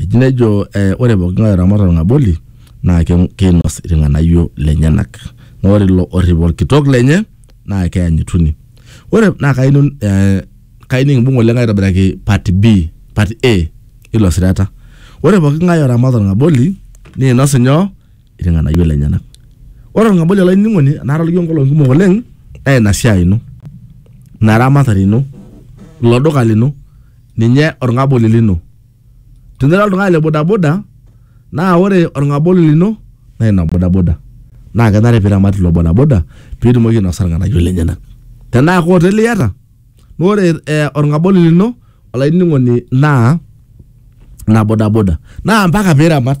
Eji nejo eh, ore pooking'ae oramat olng'aboli naa ke- keinos ilng'anayio lenyenak. Naa ore ilo orrip olkitok lenye naa keyanyituni. Ore naa kayieu nun- eh, kayieu nikimbung oleng aitobiraki part B, part A ilo sirata. Ore pooking'ae oramat olng'aboli neinos inyoo? Ilng'anayio lenyenak. Ore olng'aboli olainining'oni enaata lijo nkolong'i kumok oleng naa ina siai ino, ina ramatare ino, ilo duka lino, ninye olng'aboli lino. Tinira oltung'ani le bodaboda naa ore olng'aboli lino naa ina bodaboda. Naa kenare pee iramat ilo bodaboda pee itumoki ainosa ilng'anayio lenyena. Tenaa ke oteli iyata naa ore olng'aboli lino olainining'oni naa ina bodaboda naa mpaka pee iramat.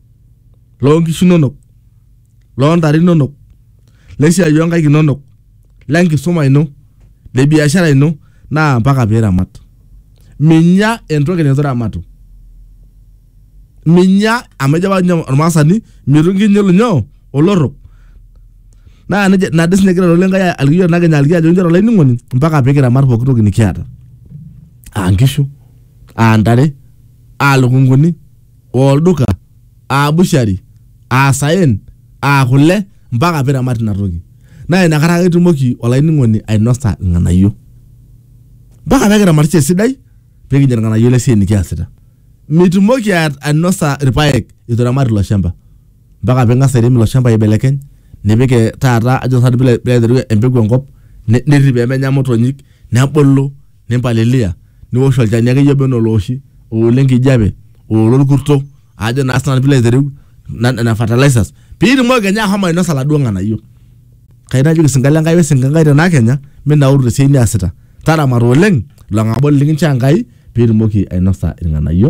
loo nkishu inonok, loo ntare inonok, lesiai oo nkaik inonok, le nkisuma ino, le biashara ino naa mpaka piramat. Minya entoki neitu iramatu. Minya amu ejo apa ninye olmaasani mitu nkinyil nyoo olorrok. Naa neija ina dii siinye egira lelo lenkai aliki iyiok nakenyu aliki ajoki inchoo olainining'oni mpaka pikiramat pooki toki nikiata aa nkishu, aa ntare, aa lukunguni. aa olduka, aa bushari, aa saen, aa kule mpaka piramat ina toki. Naa inakata ake itumoki olainining'oni ainosa irng'anayio. Mpaka pee kiramatisho esidai pee kinya irng'anayio le siai nikiasita. Mitumoki ainosa irpaek itu iramat ilo shamba. Mpaka ping'as airem ilo shamba aibelekeny nipik taata ajo sinanu piilo aiteru empeku enkop, nirrip pee menya imotonyik, nebulu nimpalilia niwosh olchani akeyie oba enaa olooshi oolo enkijape oolo orkurto ajo naa sinanu piilo aitereu na- nena fertilizers piitumoki kenya ahomo ainosa iladuo ng'anayio kai najoki sinka lenkai wesinka enkai tena kenya minauru tesiai niasita taramata oleng ilo ng'aboli likinchoo enkai piitumoki ainosa irng'anayio.